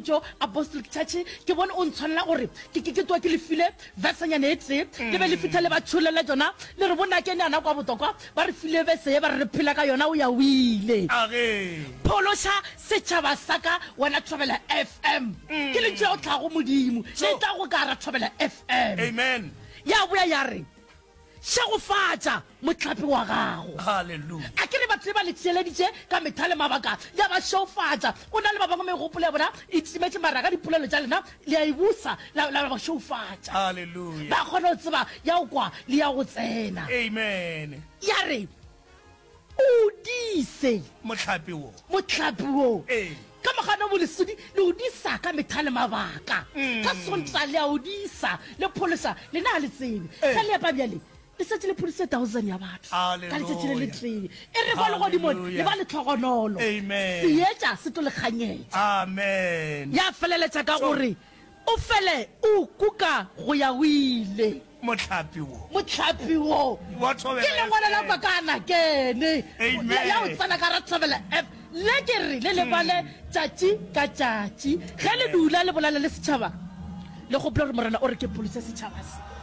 jo apostolic church ke bone o ntshwanela gore ke ke twa ke lefile vesanyane e tee mm. le be le fitha le ba tsholele jona le re bonake ne yana kwa botokwa ba re file vese ye ba re re phela ka yona o ya o ile phološa setšhaba sa ka wena thobela fm mm. ke lentso ya o tlhago modimo le tla go ka ra thobela fm amen ya boya ya re Šegofatša mohlape wa gago. Hallelujah. A ke re batho be ba le tšeeleditše ka metha le mabaka, le a ba šeufatša. Go na le ba bangwe megopolo ya bona e timetše, mara ka dipolelo tša lena le a e busa, la, la ba šeufatša. Hallelujah. Ba kgona go tseba ya go kwa le ya go tsena. Amen. Ya re, O dise. Mohlape wo. Mohlape wo. Ee. Ka mogano bo lesodi le o disa ka metha le mabaka. Ka Sonta le a o disa, le phološa, lena a le tsebe. Ge le epa bjale, le šetše le phodiše thousand ya batho ka letšatši le letee. E re kwa legodimong le ba letlhogonolo. Seetša se tlo le kganyetša. Ya feleletša ka gore. O fele o kuka go ya go ile. Mohlapi wo. Mohlapi wo. Wa Thobela FM. Ke lengwalo la kwa ka nakene. Amen. Ya go tsena ka ra Thobela FM. Le ke re le le bale tšatši ka tšatši. Ge le dula le bolela le setšhaba, le gopola gore Morena o re ke polise setšhaba se.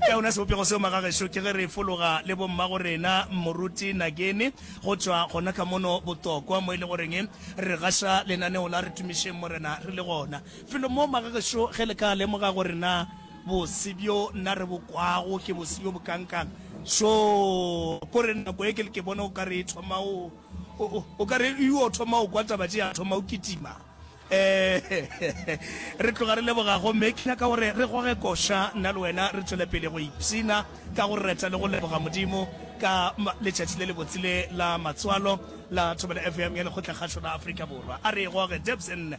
Ka yona sebopego seo, magagešo, ke ge re fologa le bommagorena Moruti Nageni go tšwa gona ka mono Botokwa, mo e le goreng re gaša lenaneo la Re Tumišeng Morena re le gona. Felo mo, magagešo, ge le ka lemoga gore na bose bjo nna re bo kwago ke bose bjo bokankang, šo kore nako e ke le ke bona o ka re e thoma o, o, o, o ka re e yo thoma go kwa taba tše, ya thoma go kitima. Ee, re tloga re leboga gomme ke nyaka gore re goge koša nna le wena re tšwele pele go ipshina ka go reta le go leboga Modimo ka letšatši le lebotse le la matswalo la Thobela FM ya Lekgotlakgašo la Afrika Borwa. A re e goge, Debs nne.